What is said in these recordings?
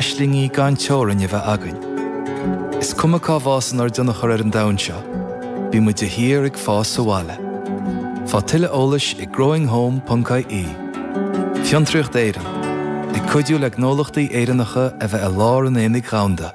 Aislingí gan teorainn a bheith againn. Is cuma cá bhfásann ár dtionchar ar an domhan seo, bíonn muid de shíor ag fás sa bhaile. Faigh tuilleadh eolais ag growinghome.ie. Fiontraíocht Éireann, ag cuidiú le gnólachtaí Éireannacha a bheith i lár an aonaigh dhomhanda.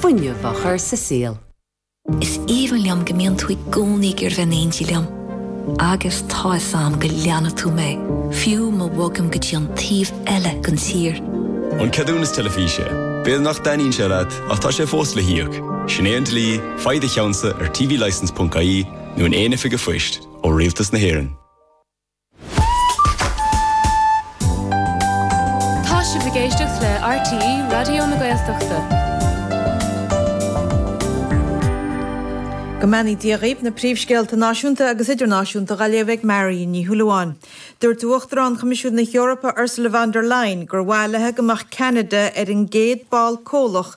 fuinneamh a chur sa saol. Is aoibhinn liom go mbíonn tú i gcónaí ag iarraidh bheith in éindí liom. Agus tá fhios a'm go leanfaidh tú mé, fiú má bhogaim go dtí an taobh eile den tír. An ceadúnas teilifíse. B'fhéidir nach dtaitníonn sé leat, ach tá sé fós le híoc. Sin é an dlí, faigh do cheannsa ar tvlicense.ie nó in aon oifig a' phoist, ó Rialtas na hÉireann. Tá sibh ag éisteacht le RTÉ Raidió na Gaeltachta. Go mbeannaí Dia dhaoibh na príomhscéalta náisiúnta agus idirnáisiúnta dha léamh ag Marion Ní Shúilleabháin. Dúirt Uachtarán Choimisiún na hEorpa Ursula von der Leyen gur mhaith leithe go mbeadh Ceanada ar an gcéad ball comhlach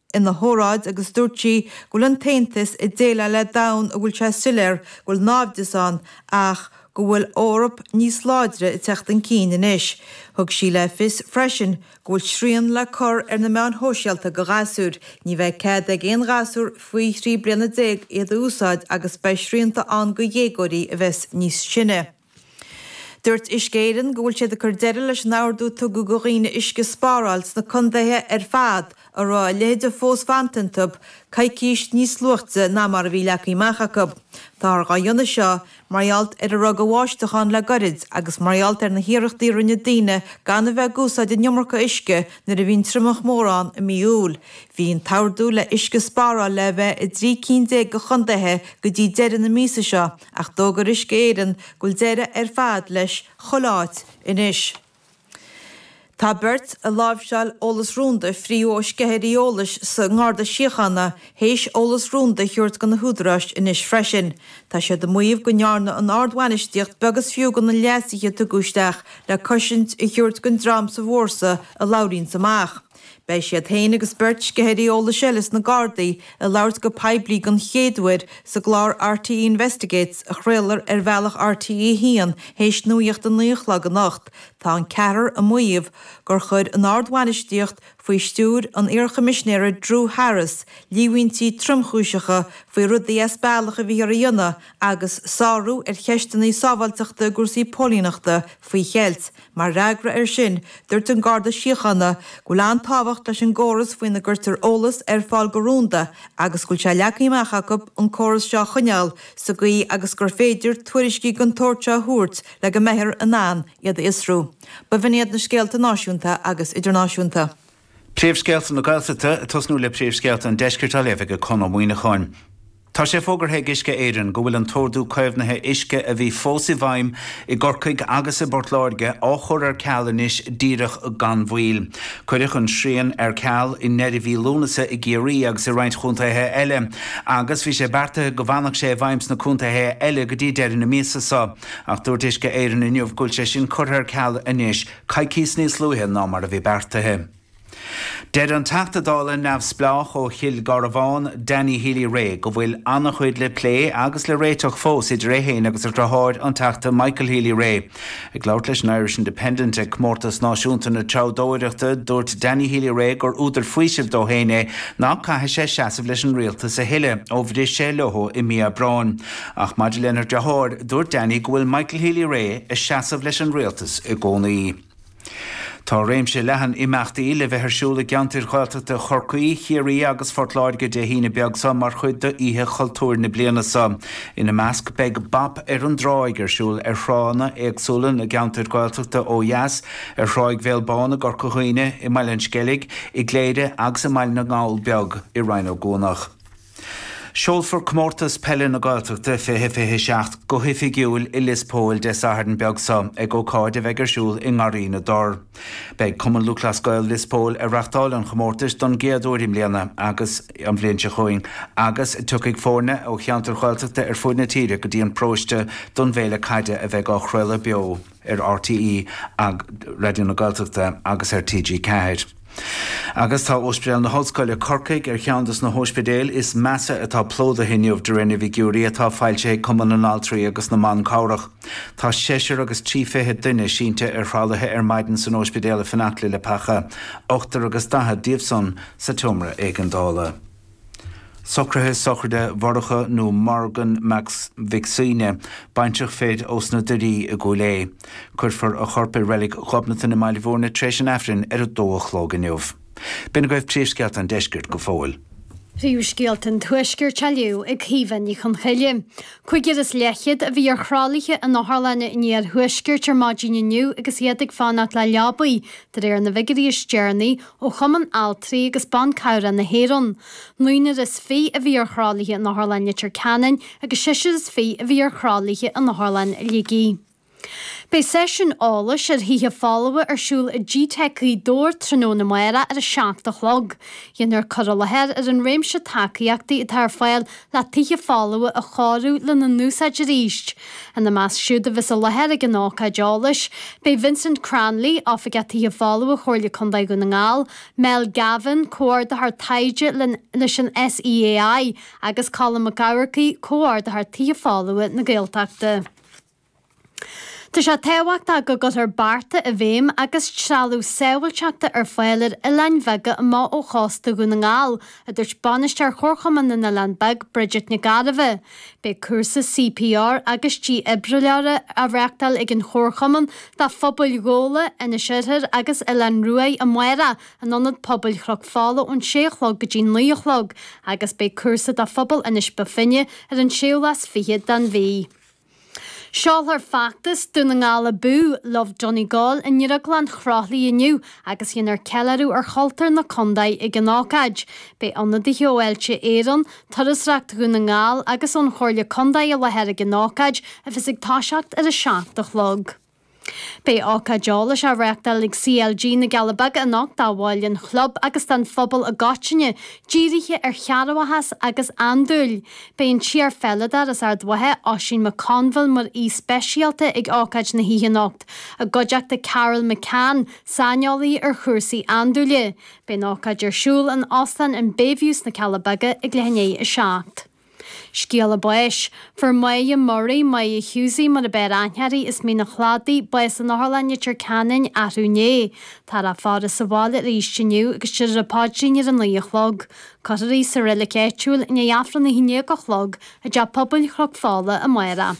ina hóráid agus dúirt sí go bhfuil an tAontas ag déileáil le domhan a bhfuil sé soiléir go bhfuil náimhdeas ann ach go bhfuil Eoraip níos láidre ag teacht chun cinn anois. Thug sí le fios freisin go bhfuil srian le cur ar na meáin shóisialta do ghasúir, ní bheidh cead ag aon ghasúr faoi thrí bliana déag iad a úsáid agus beidh srianta ann do dhéagóirí a bheas níos sine. Dúirt Uisce Éireann go bhfuil siad ag cur deireadh leis an ordú a tugadh do dhaoine uisce a spáráil sna condaetha ar fad a raibh a leithéid de fós fanta iontu, coicís níos luaite ná mar a bhí leagtha amach acu. Táthar á dhéanamh seo mar ghealt ar a raibh de bháisteach ann le goirid agus mar ghealt ar na hiarrachtaí a rinne daoine gan a bheith ag úsáid an iomarca uisce nuair a bhí an triomach mór ann i mí Iúil. Bhí an t-ordú le uisce a spáráil le a bheith i dtrí cinn déag de chondaetha go dtí deireadh na míosa seo, Ach d'fhógair Uisce Éireann go bhfuil deireadh ar fad leis chuile áit anois. Tá beirt ag láimhseáil eolas rúnda fríthi ó sceithirí eolais sa nGarda Síochána théis eolas rúnda a thabhairt go na húdaráis anois freisin. Tá siad ag maíomh go ndearna an ardbhainistíocht beag is fiú de na leasuithe a tugadh isteach le cosaint a thabhairt don dream sa bhfórsa a labhraíonns amach. Beidh siad féin agus beirt sceithirí eolais eile sna Gardaí ag labhairt go poiblí den chéad uair sa gclár RTÉ Investigates a chraolfar ar bhealach RTÉ 1 théis nuacht a naoi a chlog anocht. Tá an ceathrar ag maíomh gur chuir an ardbhainistíocht, faoi stiúir an iarchoimisnéara Drew Harris, líomhaintí tromchúiseacha faoi rudaí as bealach a bhíothas a dhéanamh agus sárú ar cheisteanna sábháilteachta i gcúrsaí póilíneachta faoi cheilt. Mar fhreagra air sin, dúirt an Garda Síochána go bhfuil an-tábhacht leis an gcóras faoina gcuirtear eolas ar fáil go rúnda agus go bhfuil sé leagtha amach acu an córas seo a choinneáil sa gcaoi agus gur féidir tuairiscí den tsórt seo a thabhairt le go mbeifear in ann iad a fhiosrú. Ba in iad na scéalta náisiúnta agus idirnáisiúnta. Príomhscéalta na Gaeltachta ag tosnú le Príomhscéalta an Deiscirt á léamh ag Conn Ó Muíneacháin. Tá sé fógartha ag Uisce Éireann go bhfuil an t-ordú caomhnaithe uisce a bhí fós i bhfeidhm i gCorcaigh agus i bPort Láirge á chur ar ceal anois díreach gan mhoill. Cuireadh an srian ar ceal i ndeireadh mhí Lúnasa i gCiarraí agus i roinnt chontaetha eile agus bhí sé beartaithe go bhfanfadh sé i bhfeidhm sna contaetha eile go dtí deireadh na míosa seo ach dúirt Uisce Éireann inniu go bhfuil sé sin curtha ar ceal anois. coicís níos luaithe ná mar a bhí beartaithe. Deir an Teachta Dála neamhspleách ó Chill Garbhán, Danny Healy Rae, go bhfuil an-chuid le plé agus le réiteach fós idir é féin agus a dhriotháir, an Teachta Michael Healy Rae. Ag labhairt leis an Irish Independent ag Comórtas Náisiúnta na Treabhdóireachta, dúirt Danny Healy Rae gur údar faoisimh dó féin é nach gcaithfidh sé seasamh leis an rialtas a thuilleadh ó bhris sé leo i mí Aibreáin. Ach maidir lena dhriotháir, dúirt Danny go bhfuil Michael Healy-Rae ag seasamh leis an rialtas i gcónaí. Tá réimse leathan imeachtaí le bheith ar siúl i gceantair Ghaeltachta Chorcaí, Chiarraí agus Phort Láirge Dé hAoine beag seo mar chuid d'Oíche Chultúir na bliana seo. Ina measc beidh Bop ar an dTráigh ar siúl ar thránna éagsúla na gceantair Ghaeltachta ó dheas, ar Thráigh Bhéal Bán i gCorca Dhuibhne, i mBaile an Sceilg, i gCléire agus i mBaile na nGall Beag i Rinn Ó gCuanach. Seolfar Comórtas Peile na Gaeltachta 2027 go hoifigiúil i Lios Póil Dé Sathairn beag seo ag ócáid a bheidh ar siúl i nGarraí na dTor. Beidh Cumann Lúthchleas Gael Lios Póil ag reáchtáil an chomórtais don gcéad uair i mbliana an bhliain seo chugainn agus tiocfaidh foirne ó cheantair Ghaeltachta ar fud na tíre go dtí an paróiste don bhféile caide a bheidh á chraoladh beo ar RTÉ Raidió na Gaeltachta agus ar TG4. Agus tá Ospidéal na hOllscoile, Corcaigh ar cheann dos na hospidéil is measa atá plódaithe inniu de réir na bhfigiúirí atá foilsithe ag Cumann na nAltraí agus na mBan Cabhrach. Tá seisear agus trí fichid duine sínte ar thralaithe ar maidin san Ospidéal ag feitheamh le leaba, ochtar agus daichead díobh san sa tseomra éigeandála. Socruithe sochraide Mhurcha nó Morgan Mac Mhic Suibhne, baintreach fir ós na Doirí i gCúil Aodha. Cuirfear a chorp i Reilig Ghobnatan i mBaile Mhúirne tréis an Aifrinn ar a dó a chlog inniu. B'in agaibh Príomhscéalta an Deiscirt go fóill. Príomhscéalta an Tuaiscirt á léamh ag Caoimhe Ní Chonchoille. Cúigear is leathchéad a bhí ar thralaithe in otharlanna an iarthuaiscirt ar maidin inniu agus iad ag fanacht le leabaidh, de réir na bhfigiúirí is deireanaí ó Chumann Altraí agus Ban Cabhrach na hÉireann, naonúr is fiche a bhí ar thralaithe in Otharlann Leitir Ceanainn agus seisear is fiche a bhí ar thralaithe in Otharlann Shligigh. Beidh seisiún eolais ar thithe folmha ar siúl i gteic Ghaoth Dobhair tráthnóna amárach ar a seacht a chlog. Déanfar cur i láthair ar an réimse tacaíochtaí atá ar fáil na tithe folmha a chóiriú lena n-úsáid arís. Ina measc siúd a bheas i láthair ag an ócáid eolais, beidh Vincent Cranley, Oifigeach Tithe Folmha Chomhairle Contae Dhún na nGall, Mel Gavin, Comhordaitheoir Taighde leis an SEAI, agus Colm Mac Eachmharcaigh, Comhordaitheoir Tithe Folmha na Gaeltachta. Tá sé tábhachtach go gcuirfear bearta i bhfeidhm agus trealamh sábháilteachta ar fáil ar oileáin bheaga amuigh ó chósta Dhún na nGall, a dúirt bainisteoir Chomharchumann na nOileán Beag, Bridget Nic Gairbheith. Beidh cúrsa CPR agus dífhibrileora á reáchtáil ag an Chomharchumann do phobail Ghabhla, Inis Oirthir agus Oileán Ruaidh amárach in Ionad Pobail Chnoc Fola ón sé a chlog go dtí naoi a chlog agus beidh cúrsa do phobal Inis Bó Finne ar an séú lá is fiche den mhí. Seolfar feachtas Dún na nGall Abú, Love Donegal, i nDrioglann Chroithlí inniu agus déanfar ceiliúradh ar chultúr na contae ag an ócáid. Beidh ionadaithe ó Fháilte Éireann, Turasreacht Dhún na nGall agus ón Chomhairle Contae i láthair ag an ócáid a bheas ag toiseacht ar a seacht a chlog. Beidh ócáid eolais á reáchtáil ag CLG na gCealla Beaga anocht do bhaill an chlub agus don phobal i gcoitinne, dírithe ar chearrbhachas agus andúil. Beidh an t-iar-pheileadóir as Ard Mhacha, Oisín McConville mar aoi speisialta ag ócáid na hoíche anocht, i gcuideachta Carl McCann, saineolaí ar chúrsaí andúile. Beidh an ócáid ar siúl in Óstán an Bayview sna Cealla Beaga ag leath i ndiaidh a seacht. Scéala báis, Fuair Moya Murray, Moya Hughesie mar ab fhearr aithne uirthi, as Mín an Chladaigh, bás in Otharlann Leitir Ceanainn, arú inné. Táthar á faire sa bhaile arís inniu agus beidh an paidrín ar a naoi a chlog. Cuirfear í sa reilic áitiúil i ndiaidh Aifreann a haon dhéag a chlog i dTeach Pobail Chnoc Fola amárach.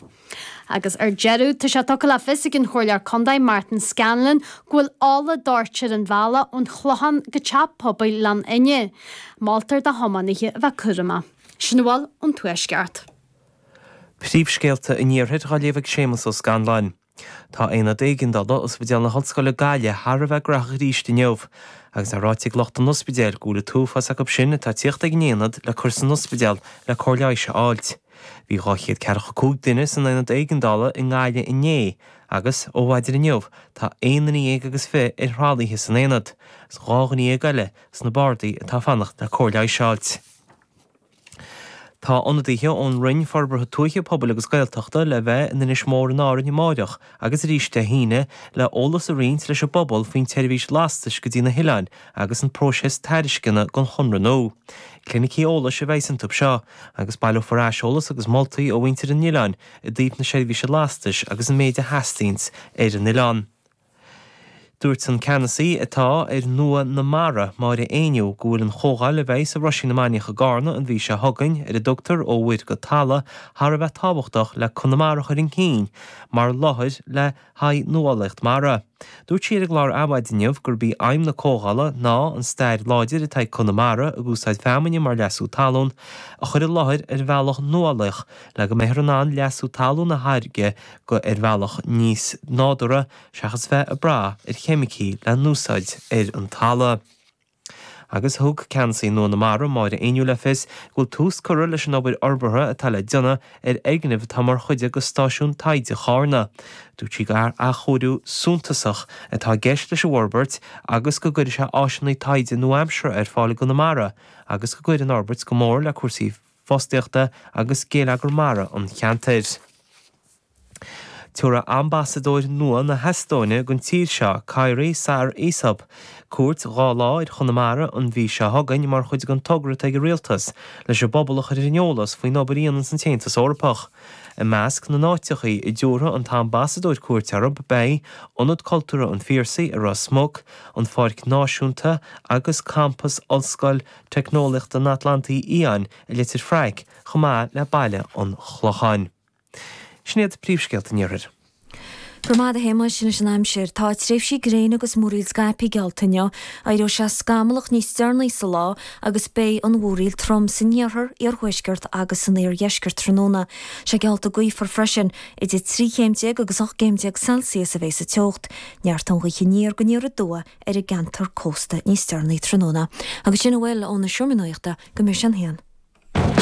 Agus ar deireadh, tá sé tugtha le fios ag an Chomhairleoir Contae, Martin Scanlon, go bhfuil ola doirte ar an bhealach ón Chlochán go Teach Pobail Ghleann Fhinne. Moltar do thiománaithe a bheith cúramach. Sin a bhfuil ón Tuaisceart. Príomhscéalta an Iarthair á léamh ag Séamus Ó Scanláin. Tá Aonad Éigeandála Ospidéal na hOllscoile Gaillimh thar a bheith cruógach arís inniu agus é ráite ag lucht an ospidéil go bhfuil an t-uafás acu sin atá ag tíocht ag an aonad le cur san ospidéal le cóir leighis a fháilt. Bhí dhá chéad ceathracha cúig duine san Aonad Éigeandála i nGaillimh inné agus, ó mhaidin inniu, tá aon duine dhéag agus fiche ar thralaithe san aonad agus dhá dhuine dhéag eile sna bardaí atá ag fanacht le cóir leighis a fháilt. Tá ionadaithe ón Roinn Forbartha Tuaithe, Pobail agus Gaeltachta le bheith in Inis Mór in Árainn amáireach agus arís Dé hAoine le eolas a roinnt leis an bpobal faoin tseirbhís lastais go dtí na hoileáin agus an próiseas tairisceana don chonradh nua. Clinicí eolais a bheidh ann an turas seo, agus baileofar aiseolas agus moltaí ó mhuintir an oileáin i dtaobh na seirbhíse lastais agus an méid a theastaíonn ar an oileán. Dúirt an Ceannasaí atá ar Nua na Mara, Máire Éinniú, go bhfuil an chomhdháil a bheas i Roisín na Mainiach i gCarna an mhí seo chugainn, ar a dtugtar 'Ó Mhuir go Talamh', thar a bheith tábhachtach le Conamara a chur chun cinn mar láthair le haghaidh nuálaíocht mara. Dúirt sí ar an gclár Adhmhaidin inniu gurb í aidhm na comhdhála ná an stair láidir atá ag Conamara ag úsáid feamainne mar leasú talún a chur i láthair ar bhealach nuálaíoch le go mbeifear in ann leasú talún a tháirgeadh ar bhealach níos nádúrtha seachas bheith ag brath ar cheimicí le n-úsáid ar an talamh. Agus thug Ceannasaí Nua na Mara, Máire Éinniú, le fios go bhfuil tús curtha leis an obair fhorbartha atá le déanamh ar fhoirgneamh atá mar chuid de Stáisiún Taighde Charna. Dúirt sí gur athchóiriú suntasach atá i gceist leis an bhforbairt agus go gcuirfidh sé áiseanna taighde nua-aimseartha ar fáil i gConamara agus go gcuirfidh an fhorbairt go mór le cúrsaí fostaíochta agus geilleagar mara an cheantair. Tabharfaidh Ambasadóir nua na hEastóine don tír seo, Kairi Saar-Isop, cuairt dhá lá ar Chonamara an mhí seo chugainn mar chuid den togra atá ag an Rialtas leis an bpobal a chur ar an eolas faoin obair a dhéananns an tAontas Eorpach. I measc na n-áiteachaí a dtabharfaidh an tAmbasadóir cuairt orthu beidh Ionad Cultúrtha an Phiarsaigh i Ros Muc, an Pháirc Náisiúnta agus Campas Ollscoil Teicneolaíochta an Atlantaigh Fhiáin i Leitir Fraic chomh maith le Baile an Chlocháin. Sin iad príomhscéalta an Iarthair. Go raibh maith agat a Shéamais. Anois an aimsir. Tá tréimhsí gréine agus múraíl scaipthe geallta inniu. Éireoidh sé scamallach níos deireanaí sa lá agus beidh an mhúraíl trom san iarthar, iarthuaisceart agus san iardheisceart tráthnóna. Sé geallta gaofar freisin. Idir trí chéim déag agus ocht gcéim déag Celsius a bheidh sa teocht. Neartóidh an ghaoth aniar go aniar aduaidh ar an gceantar cósta níos deireanaí tráthnóna. Agus sin a bhfuil ó na seomraí nuachta go mbeidh sé a haon.